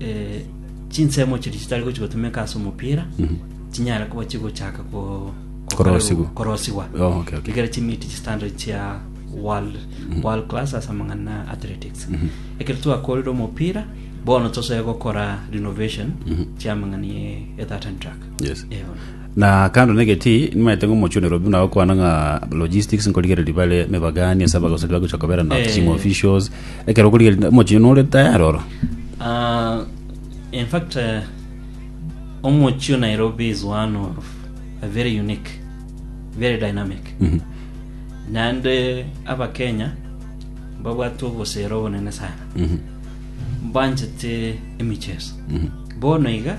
eh, chinsemo chiria chitari gochi gotumeka ase omopira chinyare kuba chigochaka ko- ko- Korosigwa. korosigwa Oh, okay, okay. ekero chimiti chistandard chia world, world class ase amang'ana a athletics ekero twakorire omopira bono tosee gokora renovation chia amang'ana ye- ye that and track yes Eh, bono. Na kando negetii, nimaete ng'a omochunero buna agokwana ng'a logistics nkorigereria bare mebagani ase abagosori bagocha kobera na Eh. team officials ekero okorigereria omochie nore tayari oro Ah, in fact eh, omochi o nairobi is one of a very unique very dynamic Mhm. naende abakenya babwate obosere obonene sana Mhm. banchete emicheso Mhm. bono iga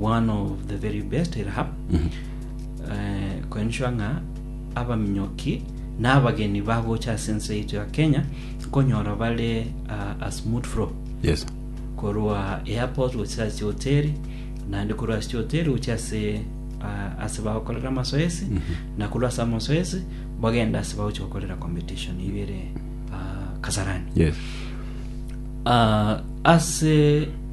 one of the very best eraha eh, koenchwa ng'a abaminyoki na abageni bagocha ase ense yaito ya kenya nkonyora bare ah, a smooth flow yes korwa airport gochia ase hoteli naende korwa ase hoteli gochia ase ah, ase bagokorera amasoesi na korwa ase amasoesi bagenda ase bagochia gokorera competition eyio ere ah, kasarani yes Ah, ase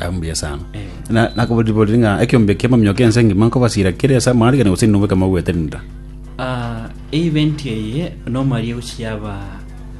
Ah, mbuya sana Eh. Na- nakoboriborire ng'a ekiombe kia mamio kia ense engima nkobasira kere ase amarigani gose inwe ekero mogwetenera Ah, event eye normally egochia yaba